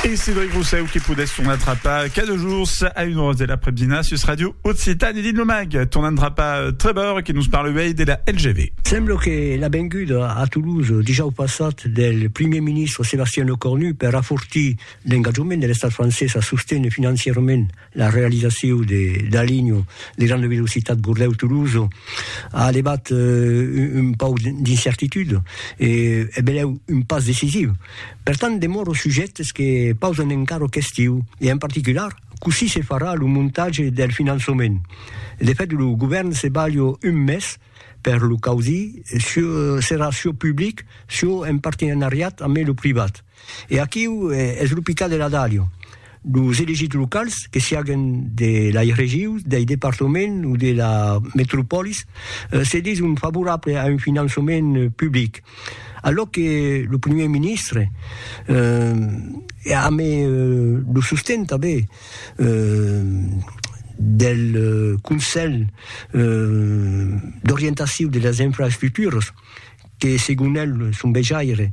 Et Cédric Rousseau qui poudait son attrapa cada jours à une heure de l'après-midi sur Radio Occitane dit le mag ton attrapa euh, Trevor qui nous parle de la LGV. Sembla que la venguda a Toulouse dijous passat del Primier ministre Sébastien Lecornu per afortir l'engatjament de l'estat francés a sostene financierament La realizaciu de la linha de granda velocitat Bordeus-Tolosa a levat un pauc d'incertitud e es benlèu un pas decisiu. Per tant, demòro sujèctes que pausan encara questiu e en particular cossí se farà lo montatge del finançament. De fèt, lo govèrn se balha un mes per lo causir, çò serà çò public, çò en partenariat amé lo privat. E aquiu es lo picat de la dàlia. Los elegits locals, que siaguen de lai regiu, dei departament o de la metropolis, se dison favorable a un finançament public. Alòc que lo primièr ministre, amb lo sosten tanben del Conselh d'orientaciu de las infraestructuras, que segon el son vejaire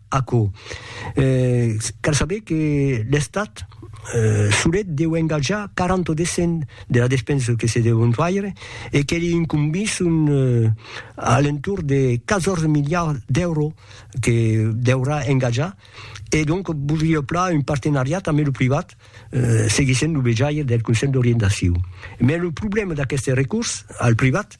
Aquò. Cal saber que l'Estat solet deu engatjar 40 o descent de la despensa que se deu entuaire e que li incombís un alentorn de 14 miliards d'èuros que deurà engatjar e donc voldria plan un partenariat ambe lo privat seguissent lo vejaire del Conselh d'Orientacion. Mès lo problèma d'aqueste recors al privat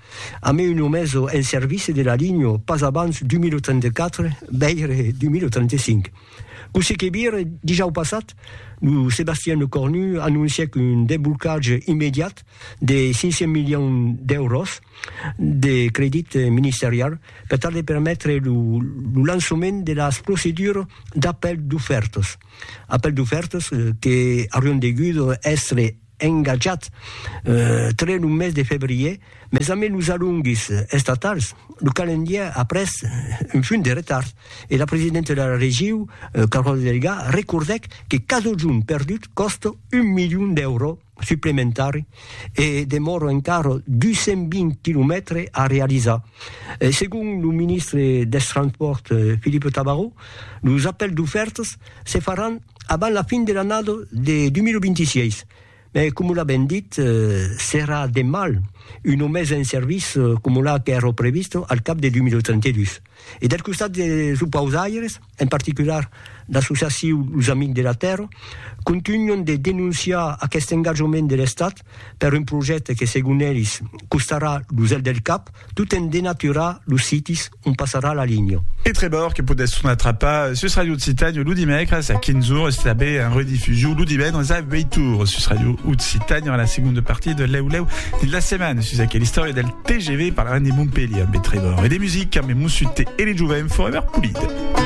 A me un omeso en service de la linho pas abans 2034, veire 2035. Cossí que vire, dijau passat, lo Sébastien Lecornu anoncièc un desblocatge immediat de 500 milions d'èuros de credit ministerial per tal de permetre lo lançament de las procedures d'apèl d'ofèrtas. Apèl d'ofèrtas que aurián degut èstre engatjat tre lo mes de febrier, mes ambe los alonguis estatals, lo calendièr a pres un punt de retard e la presidenta de la regiu, Carole Delga, recordèc que casojun perdut còsta un milion d'èuro suplementari e demòra encara 220 quilomètre a realizar. Segon lo ministre dels Transpòrts, Philippe Tabarot, los apèls d'ofèrtas Se faràn abans la fin de l'annada de 2026, mai coma l'avèm dit, serà de mal una mesa en serviç coma la qu'èra prevista al cap de 2032. E del costat dels opausaires, en particular l'associacion Los Amics de la Tèrra, contunhan de denonciar aqueste engatjament de l'Estat per un projècte que segon elis costarà lo zel del cap tot en denaturar los sitis ont passarà la linha. E Trevor que podèsson atrapar sus Ràdio Occitània lo dimècres a 15 ores e tanben en redifusion lo divendres a 8 ores sus Ràdio Occitània en la segonda partia de Lèu Lèu dins la setmana sus aquela istòria del TGV parlarem de Montpelhier amb e Trevor e de musica amb e Mossut e de Jovent Forever Polide.